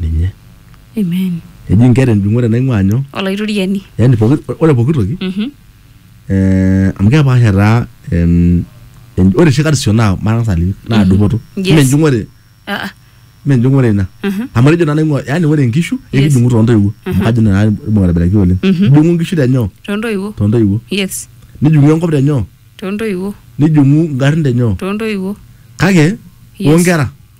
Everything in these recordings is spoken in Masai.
ninye Amen. eji nkera enjung'ore naing'ua nyoo Olaitoriani. yani poki, ore poki toki Mhm. eh, amu kepaasha taa em, en- ore oshi karsisho naa matang'as aliki naa dupoto Yes. mme enjung'ore Ah, ah. mme enjung'ore ina Mhm. amu etejo naa naing'ua yani ore nkishu Yes. ekijung'u toontoiwuo amu kajo naa imbung aitobiraki oleng Mhm. ijung'u nkishu tenyoo Tontoiwuo. toontoiwuo Yes. nijung'u enkop tenyoo Tontoiwuo. nijung'u ngarrin tenyoo Tontoiwuo. kake Yes. onkera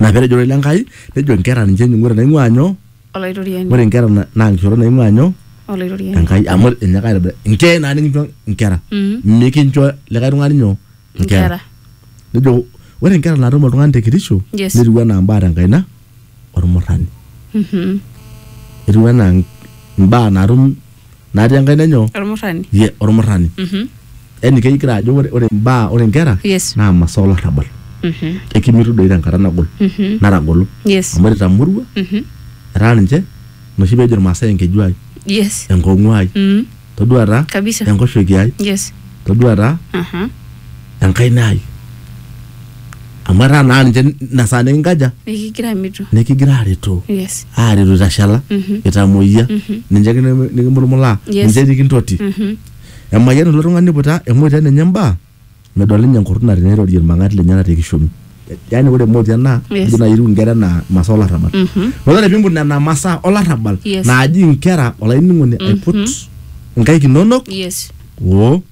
Ina pee etejo ororei le Nkai nejo nkera ninche enying'oto naing'uaa nyoo? Olaitoriani. Ore nkera na- naa nkishorot naing'uaa nyoo? Olaitoriani. Enkai amu enyaaka aitobira. Nchee naa nikincho nkera. Mm. Mikincho likae tung'ani nyoo? Nkera. Nejo ore nkera naatum oltung'ani te kitisho Yes. netiu enaa mbaa te nkaina olmurrani. Mhm. Etiu enaa mbaa naatum natii enkaina enyo Olmurrani. ye olmurrani Mhm. yani kegira ajo ore ore imbaa ore inkera Yes. naa masaa olarrabal Mhm. ekimitu doi tenkata nagol Mhm. natagolo Yes. amu etamoruo Mhm. etaa ninche noshi peejo ilmaasai enkeju ai Yes. enkong'u ai Mhm. todua taa Kabisa. enkoshoki ai Yes. todua taa Aha. enkaina ai amu etaa naa ninche ina saa nikinkaja nikigira amitu nikigira aretu yes aretu itashala Mhm. itamoyia ninche ake niki- nikimulumulaa Yes. ninche nikintoti Mhm. emayian ilo tung'ani iputa emotian enye mbaa medol ninye enkurruna teneirorie irmang'ati lenyena te kishomi yaani ore emotian naa Yes. ijo naaji etiu inkera enaa masaa olarrabal Mhm. Metaa ore piimput nena masaa olarrabal Yes. naaji inkera olainining'oni aiput inkaik inonok yes oo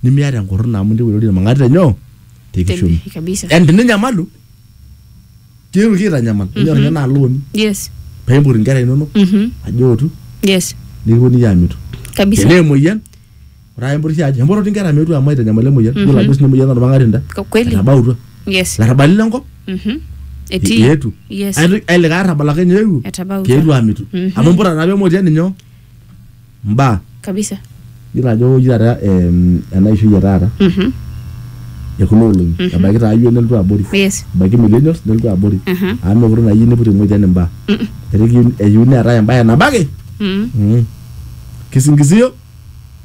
nimiata enkurruna amu intieu airorie irmang'ati lenyoo te kishoni Te- kabisa. yani teninyamalu tiaku kitanyamal enyor ninye naa looni yes paimpot inkera inonok Mhm. ajo otu yes nikiponunui aamitu kabisa tenaa emoyian ore ake impotisho ajo empototi inkera meetu amu aitanyamal emoyian yiolo ajo sii emoyian olmang'ati nda Kwa kweli etabautua yes larrabali lenkop Mhm. etii eetu yes Ai- ai likae arrabal ake ninye eewuo etabautua keetu aamitu Mhm. amu imputa naa pemotian ninye mbaa kabisa iyiolo ajo ore oshi taata em, ena ishoi e taata Mhm. e kuna olong'i ebaiki taa iyio nelotu abori yes ebaiki millennials nelotu abori Mhm. amu mekure naa iyieu niput eng'ojian imbaa Mm-mm. etaa ekiyieu- eyieu neetae embae nabo ake Mm. mm, kisingizio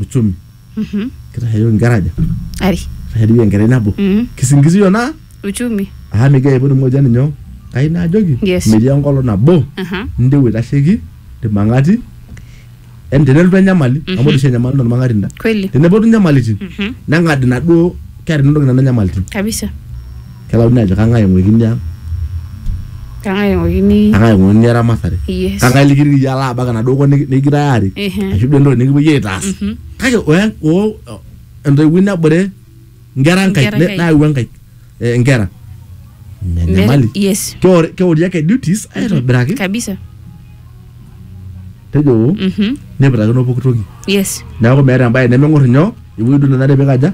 uchumi Mhm. kitashayioki inkera aja Ari. kitashayioki enkerai nabo Mhm. kisingizio naa Uchumi. aa migira aipotu moja ninyo kai naajoki Yes. metii enkolong nabo Aha. ndewe itasheki irmang'ati en tenelotu enyamali amu ore oshi enyamali naa ormang'ati ina Kweli. tenepotu inyamalitin Mhm. neng'ad inaduo kera inonok nena nyamalitin Kabisa. Kelauni ajo kang'ae eng'uikini ang'. Kang'ae eng'uikini. Kang'ae eng'uikini eramatare. Yes. Kang'ae likitiki iyie alo abak enaduo kop nikigirai aarik. Ashu duo entoki nikipuoi aitaas. Kake oo entoiwuoi nebore inkera enkaik nayau enkaik inkera. Ina enyamali. Yes. Keori ake duties aitobiraki. Kabisa. Nejo nipikakino pooki toki. Yes. Neeku meeta embae nemeng'or inyoo ewuei duo nenare pikaja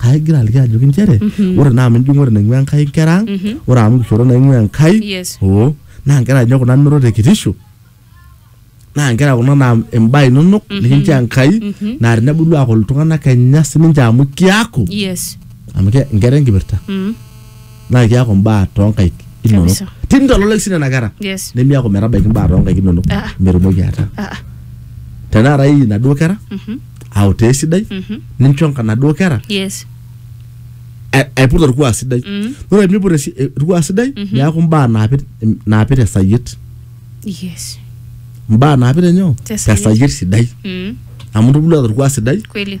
kaigira aliki ajoki nchere ore naa amu enjung'ore naing'ua enkai inkera ang ore amu kishooro naing'ua enkai Yes. oo naa nkera ninye kuna ninoto te kitisho naa nkera kuna naa imbaa inonok nikincho enkai naa tenebulu aaku iltung'anak kenya sininche amu kiaku yes amu ke- nkera enkipirta Mm. naa kiaku mbaa toonkaik inonok Kabisa. tinitololek sii nena kera Yes. nemiaku metabaiki mbaa toonkaik inonok Ah, ah. metumoki ataa Ah, ah. tenakata iyie inaduo kera Mhm. autaa esidai Mhm. nincho nka- naduo kera Yes. a- aiput orkuak sidai Mm. ore miput esi- eh, orkuak sidai Mhm. neaku mbaa naapit naapit esayiet Yes. mbaa naapit enyoo Tesayiet. tesayiet sidai Mm. amu intubulua torkuak sidai Kweli.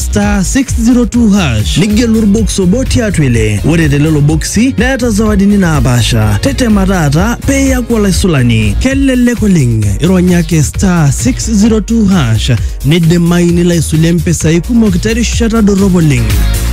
star 602 hash nigelu orbox obo tiatua ile ore telelo boksi neeta zawadini naapaasha tetema taata pee iyaku olaisulani kelelek oleng ironya ake star 602 hash nidimayu nilo aisulie mpisai kumok terishata dorrop oleng